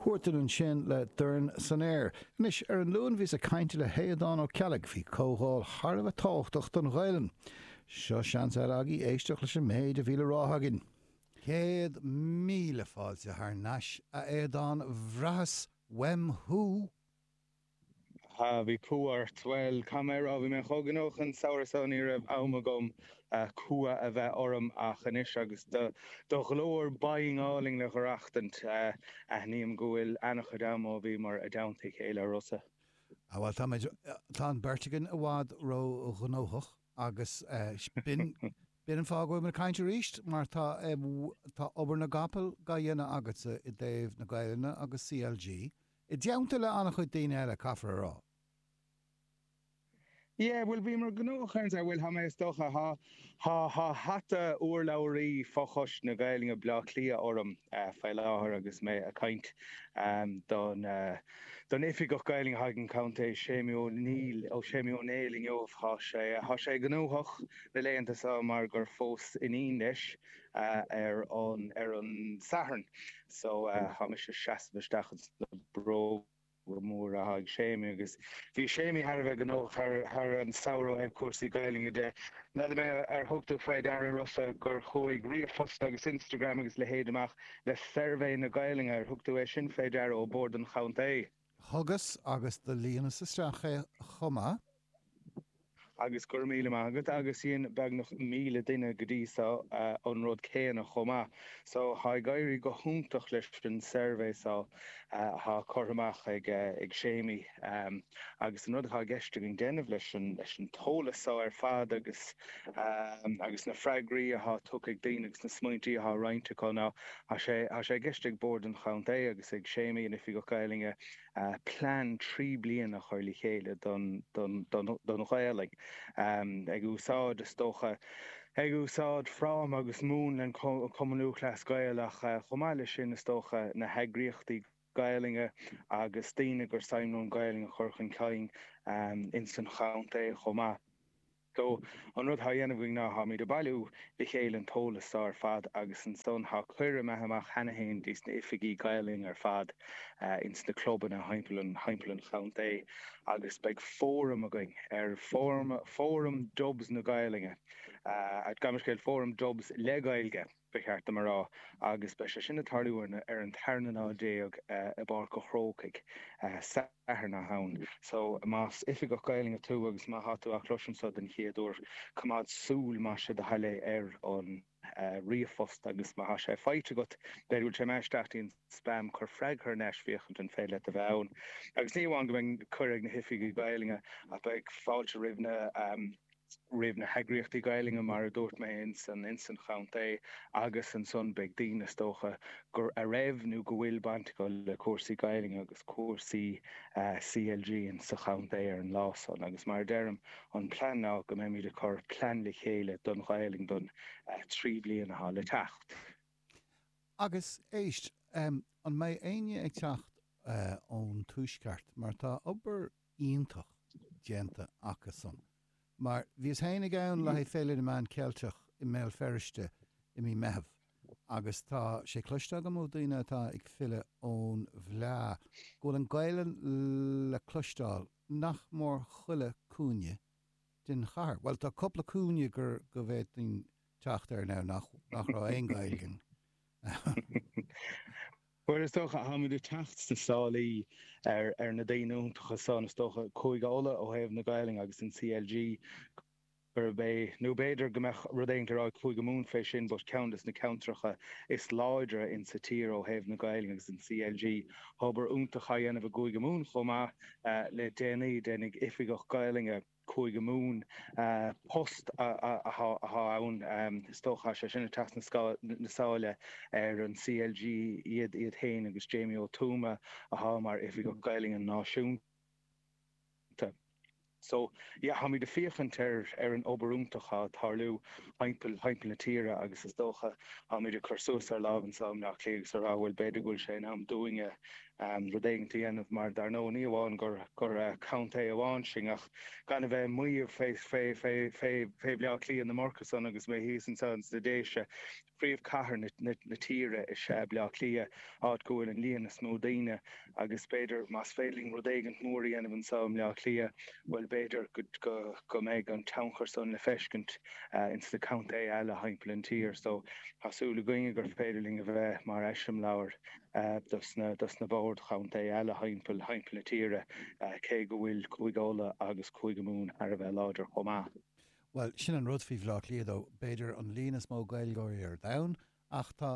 Chúirtean ansin le dorn san aer. Anois, ar an Luan bhíos ag caint le hAodán Ó Ceallaigh faoi comhdháil thar a bheith tábhachtach don Ghaelainn. Seo seans eile agaí éisteacht leis an méid a bhí le rá againn. Céad míle fáilte thar nais, a Aodáin, bhraitheas uaim thú! ha bhí cumha ort! bhuel cad mé á rá bhí mé chomh gnóthach an samhradh seo ní raibh am agam cumha a bheith orm ach anois agus do do ghlór binn álainn le haireachtaint aithním go bhfuil ana-chuid am ó bhíomar i dteannta a chéile a Rossa. ha bhuel táimid tá an beirt againn i bhfad ró-ghnóthach agus b'in b'in an fáth go bhfuil muid ag caint arís mar tá tá obair na gcapall dá dhéanamh agatsa i dtaobh na Gaelainne agus CLG I dteannta le an-chuid daoine eile, caithfear a rá. Yeah, bhuel, bhíomar gnóthach ansan bhuel, tá mé, is dócha, tá, tá, tá hata urlabhraí fho-choiste na Gaeilge Bhleá Cliath orm faoi láthair agus mé ag caint don, don Oifigeach Gaeilge atá ag an County, Séimí Ó Néill, ó Séimí Ó Néill inniu. Tá sé, tá sé gnóthach na laethanta so mar gur phós iníon leis. ar an Satharn so tá mise seasamh isteach ins na bróga móra athá ag Séimí agus bhí Séimí thar a bheith gnóthach thar an samhradh ó thaobh cúrsaí Gaelainne de. N'fheadar mé ar thug tú faoi deara Rossa gur chuaigh ríomhphost agus Instagram agus leithéid amach le suirbhé na Gaelainne, ar thug tú é sin faoi deara, ó Bhord an Chontae? Thugas agus do líonas isteach é chomh maith. Agus go raibh míle maith agat. Agus dhein beagnach míle duine go dtí so an rud céanna chomh maith. So tá ag éirí go hiontach leis an suirbhé so atá curtha amach ag Séimí. Agus an rud atá i gceist againn déanamh leis an t-eolas so ar fad agus na freagraí atá tugtha ag daoine agus na smaointí atá roinnte acu ná Tá sé i gceist ag Bord an Chontae agus ag Séimí, an Oifigeach Gaelainne, plean trí bliana a chur le chéile don Ghaelainn, ag úsáid, is dócha, ag úsáid fráma agus múnla an Chumann Lúthchleas Gael ach, chomh maith leis sin, is dócha, na heagraíochtaí Gaelainne agus daoine gur suim leo an Ghaelainn a chur chun cinn ins an chontae chomh maith. So, an rud thá dhéanamh againn ná tháimid a' bailiú le chéile an t-eolas so ar fad agus ansan thá cuireadh imithe amach cheana fhéin dtí sna hoifigigh Gaelainne ar fad ins na clubanna thimpeall an, thimpeall an chontae agus beidh fóram againn ar, fóram, fóram Dubs na Gaelainne, gabh mo leithscéal, fóram Dubs le Gaeilge. ba cheart dom a rá, agus beidh sé sin ag tarlú ar an tarna lá is fiche i bPáirc an Chrócaigh Satharn so chugainn. So, más Oifigeach Gaelainne tú agus má tá tú á chloisint seo den chéad uair, coimeád súil, más é do thoil é, ar an ríomhphost agus má tá sé faighte agat, b'fhéidir go bhfuil sé imithe isteach dtí'n spam, cuir freagra thar n-ais féachaint an féidir leat a bheith ann. Agus ní amháin go mbeidh cuireadh ag na hOifigigh Ghaelainne ach beidh fáilte roimh na. roimh na heagraíochtaí Gaelainne, mar a dúirt mé, ins an chontae agus ansan beidh daoine, is dócha, a raibh nó go bhfuil baint acu le cúrsaí Gaelainne agus cúrsaí CLG ins an chontae ar an lá san. Agus mar a deirim, an plean ná go mbeimid ag cur plean le chéile don Ghaelainn don trí bliana atá le teacht. Agus, éist, an mbeidh éinne ag teacht ón Tuaisceart, mar tá obair iontach déanta acusan. Mar, bhíos féin ag ann le haghaidh Féile na Meán Ceilteach i mBéal Feirste i mí Meitheamh agus tá sé cloiste agam ó daoine atá ag filleadh ón bhFleá go bhfuil an Ghaelainn le cloisteáil nach mór chuile cúinne den chathair. Bhuel, tá cúpla cúinne gur, go bhféadfainn teacht air now nach raibh aon Ghaeilge ann. Bhuel, is dócha, táimid ag teacht sna sála ar na daoine iontacha san, is dócha, Cúige Uladh ó thaobh na Gaelainne agus an CLG gurb é, nó b'fhéidir go mbeadh rud éigint á rá ag Cúige Mumhan fé sin but ceann dos na ceantracha is láidre in sa tír ó thaobh na Gaelainne agus an CLG. Tá obair iontach á dhéanamh i gCúige Mumhan chomh maith le déanaí, déanfaidh Oifigeach Gaelainne. Cúige Mumhan post atá ann. Is dócha tá sé sin ag teacht sna sála ar an CLG iad féin agus Jamie Ó Tuama atá mar Oifigeach Gaeilge Náisiúnta. So, yeah, táimid ag féachaint ar an obair iontach atá ag tarlú thimpeall na tíre agus is dócha táimid ag cur suas ár lámh anseo i mBleá Cliath agus ag rá bhuel b'fhéidir go bhfuil sé in am dúinne ann rud éigint a dhéanamh mar dar ndóigh ní amháin gur gur contae amháin sinn ach gan a bheith ag maíomh fé fé fé fé fé Bhaile Átha Cliath ná mórtasach agus mé thíos anseo ins na Déise príomhchathair na na na tíre is ea Baile Átha Cliath áit go bhfuil an líon is mó daoine agus b'fhéidir más féidir linn rud éigint mór a dhéanamh anseo i mBaile Átha Cliath bhuel b'fhéidir go go go mbeidh an tionchar san le feiscint ins na contaetha eile thimpeall an tír so tá súil againne gur féidir linn a bheith mar eiseamláir dos na boird chontae eile thimpeall na tíre, cé go bhfuil Cúige Uladh agus Cúige Mumhan thar a bheith láidir chomh maith. Bhuel, sin an rud faoi Bhleá Cliath, tá b'fhéidir an líon is mó Gaeilgeoirí ar domhan ach tá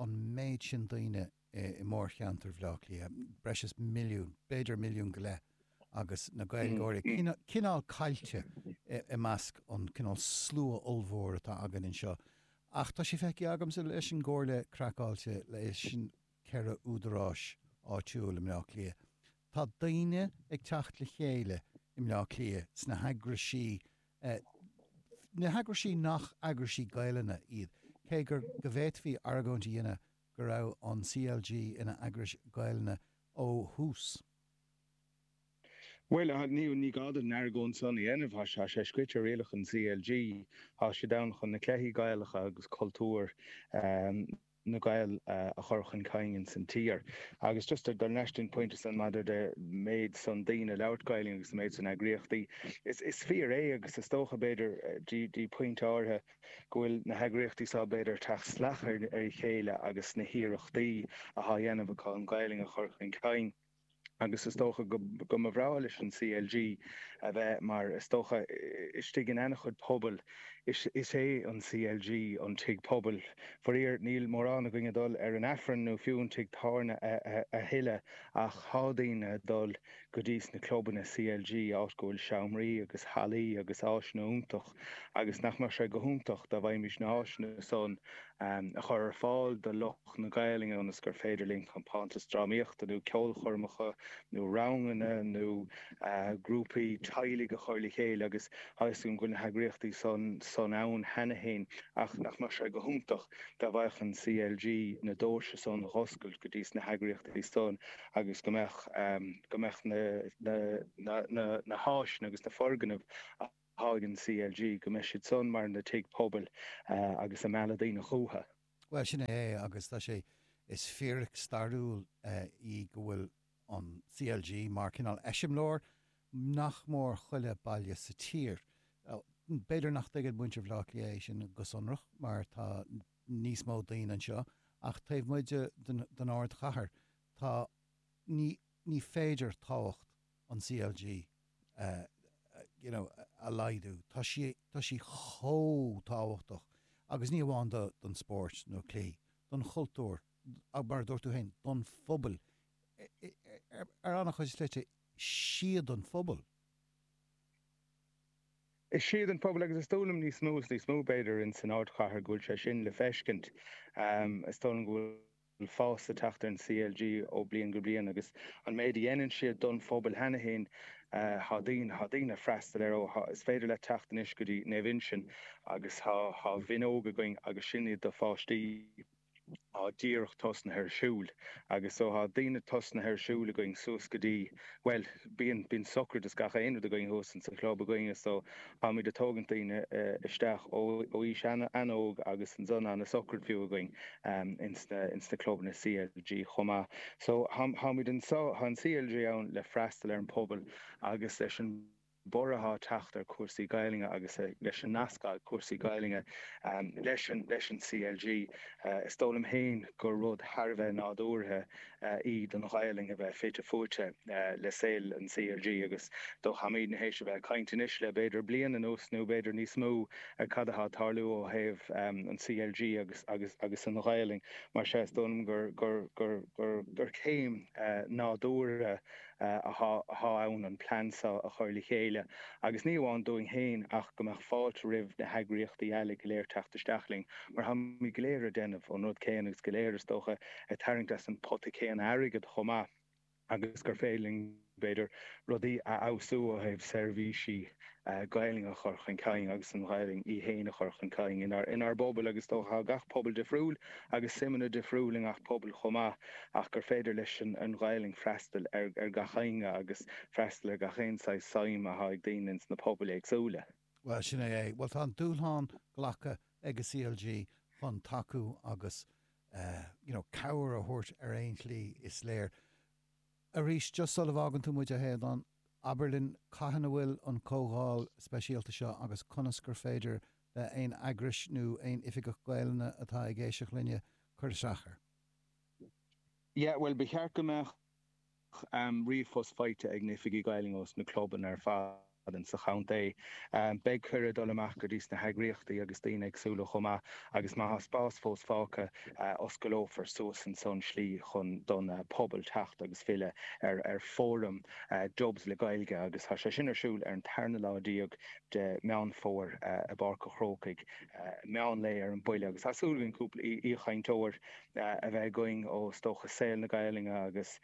an méid sin daoine i mórcheantar Bhleá Cliath, breis is milliún, b'fhéidir milliún go leith. agus na Gaeilgeoirí cineál caillte i measc an cineál slua ollmhór atá againn anseo. Ach tá sé feicthe agamsa leis an gComhairle Craiceáilte, leis na ceithre údaráis áitiúil i mBleá Cliath, tá daoine ag teacht le chéile i mBleá Cliath sna heagraisí, na heagrais nach eagrais Gaelainne iad, cé gur go bhféadfaí argóint a dhéanamh go raibh an CLG ina eagras Gaelainne ó thús. Bhuel, ní gá dom an argóint san a dhéanamh, tá sé scríte i rialacha an CLG, tá siad ann chun na cluichí Gaelacha agus cultúr na nGael a chur chun cinn ins an tír. Agus just dul leis an phointe san maidir leis an méid san daoine ag labhairt Gaelainne agus an méid san eagraíochtaí, is fíor é agus is dócha b'fhéidir go dtí pointe áirithe, go bhfuil na heagraíochtaí seo, b'fhéidir, ag teacht salach ar a chéile agus na hiarrachtaí athá dhéanamh acu an Ghaelainn a chur chun cinn agus is dócha go mba bhreá leis an CLG a bheith mar, is dócha, istigh in ana-chuid pobail. Is é an CLG an tigh pobail. Faraor, níl mórán againn ag dul ar an Aifreann nó fiú an tigh tábhairne a thuilleadh ach thá daoine ag dul. go dtí sna clubanna CLG áit go bhfuil seomraí agus hallaí agus áiseanna iontach agus nach mbeadh sé go hiontach dá bhféadfaimis na háiseanna san a chur ar fáil do lucht na Gaelainne ionas gur féidir linn compántais drámaíochta nó ceolchoirmeacha nó ranganna nó grúpaí teaghlaigh a chur le chéile agus tuigim go bhfuil na heagraíochtaí san ann cheana féin ach nach mbeadh sé go hiontach dá bhféadfadh an CLG na doirse san a dh'oscailt go dtí sna heagraíochtaí san agus go mbeadh go mbeadh na na háiseanna agus na foirgnimh athá ag an CLG go mbeidh siad san mar na tigh pobail agus ag mealladh daoine chucha. Bhuel sin é é agus tá sé is fíric stairiúil í go bhfuil an CLG mar cineál eiseamláir nach mór chuile baile sa tír. B'fhéidir nach dtuigeann muintir Bhaile Átha Cliath é sin go sonrach mar tá níos mó daoine anseo ach taobh amuigh den ardchathair tá ní ní féidir tábhacht an CLG you know a laghdú. Tá sí tá sí chomh tábhachtach agus ní amháin do don spórt nó cluichí, don chultúr ach mar a dúirt tú féin don phobal ar ar an-chuid slite is iad an pobal. Is iad an pobal agus is dóigh liom níos mó is níos mó, b'fhéidir, ins an ardchathair go bhfuil sé sin le feiscint. Is dóigh liom go bhfuil fás ag teacht ar an CLG ó bliain go bliain agus an méid a dhéanann siad don phobal cheana féin tá daoine tá daoine ag freastal air ó is féidir leat teacht anois go dtí Naomh Uinseann agus tá Mionóga againn agus sin iad do pháistí. tá díreach tosnaithe ar siúl agus so tá daoine tosnaithe ar siúl againn suas go dtí, bhuel, bíonn, bíonn socraid is gach aon rud againn thuas in sa chlub againn is so táimid ag tógaint daoine isteach ó aois an-óg agus ansan na socraid fiú againn in sna, in sna clubanna CLG chomh maith. So táimid anso, tá an CLG ann le freastal ar an pobal agus leis an. borradh atá ag teacht ar chúrsaí Gaeilge agus leis an nasc atá ag cúrsaí Gaeilge leis an CLG. Is dóigh liom féin gur rud thar a bheith nádúrtha í don Ghaelainn a bheith fite fuaite le saol an CLG agus dócha muid in éis a bheith ag caint anois le b'fhéidir bliain anuas nó b'fhéidir níos mó ar cad atá ag tarlú ó thaobh an CLG agus an Ghaelainn. Mar sin, is dóigh liom gur céim nádúrtha. atá ann an plean seo a chur le chéile agus ní amháin dúinn féin ach go mbeadh fáilte roimh na heagraíochtaí eile go léir teacht isteach linn mar táimid go léir ag déanamh an rud céanna agus go léir is dócha ag tarraingt as an pota céanna airgid chomh maith agus gur féidir linn, b'fhéidir, rudaí a fheabhsú ó thaobh seirbhísí Gaelainn a chur chun cinn agus an Ghaelainn í féin a chur chun cinn inár bpobail agus is dócha tá gach pobal difriúil agus suimeanna difriúil i ngach pobal chomh maith ach gur féidir leis an Ghaelainn freastal ar gach éinne agus freastal ar gach aon saghas suim atá ag daoine ins na pobail éagsúla. Bhuel, sin é é. Bhuel, tá an dúshlán glactha ag an CLG chun tacú agus, you know, cabhair a thabhairt ar aon tslí, is léir. Arís, just sula bhfágann tú muid, a Aodhán, abair linn cathain a bhfuil an comhdháil speisialta seo agus conas gur féidir le haon eagrais nó aon Oifigeach Gaelainne atá ag éisteacht linne cur isteach air? Yeah, bhuel, ba cheart go mbeadh ríomhphost faighte ag na hOifigigh Gaelainne ós na clubanna ar fad. insa chontae. Beidh cuireadh dul amach go dtí sna heagraíochtaí agus daoine éagsúla chomh maith agus má tá spás fós fágtha, osclófar suas ansan an tslí chun don pobal teacht agus freastal ar fóram Dubs le Gaeilge agus tá sé sin ar siúl ar an tarna lá déag de Meán Fómhair i bPáirc a' Chrócaigh meán lae ar an buille agus tá súil againn cúpla aoichainteoir a bheith againn ó is dócha saol na Gaelainne agus.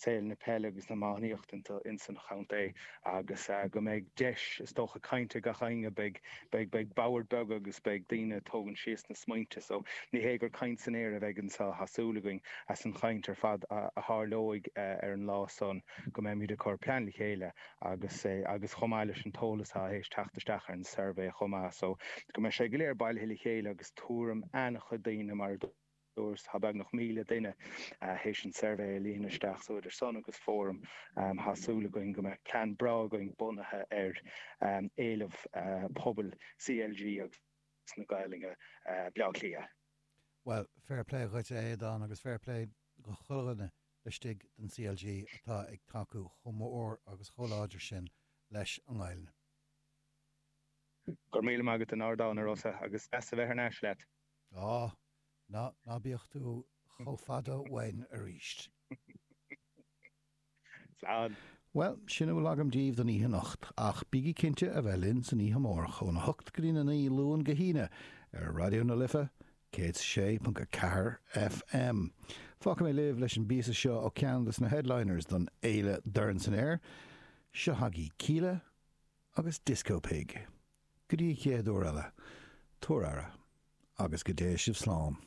saol na peile agus na hiománaíochta ins an chontae agus go mbeidh deis is dócha cainte ag gach éinne. Beidh boird beaga agus beidh daoine ag tógaint síos na smaointe so ní hé gur caint san aer a bheidh anseo thá súil againn as an chaint ar fad a tharlóidh ar an lá san go mbeimid ag cur plean le chéile agus agus chomh maith leis an t-eolas thá éis teacht isteach ar an suirbhé chomh maith so go mbeidh sé go léir bailithe le chéile agus tuairim ana-chuid daoine mar a is tá beagnach 1,000 duine théis an suirbhé a líonadh isteach so idir san agus fóram tá súil againn go mbeidh plean breá againn bunaithe ar éileamh pobail CLG agus na Gaeilge Bleá Cliath. Bhuel, fair play dhuitse a Aodán agus fair play dho chuile dhuine laistigh den CLG atá ag tacú chomh mór agus chomh láidir sin leis an nGaeilge. Go raibh míle maith agat a Aodán, a Rossa, agus deas a bheith thar n-ais leat. Á, ná bíodh tú chomh fada uainn arís. Slán. Bhuel, sin a bhfuil agam daoibh don oíche anocht, ach bígí cinnte a bheith linn san oíche amárach óna hocht go dtína naoi, Luan go hAoine, ar Raidió na Life 106.4 FM. Fágfaidh mé libh leis an bpíosa seo ó ceann des na headliners don fhéile Dorn San Aer, Seo chugaibh Kíla agus Disco Pig. Go dtí an chéad uair eile, tabhair aire, agus go dté sibh slán.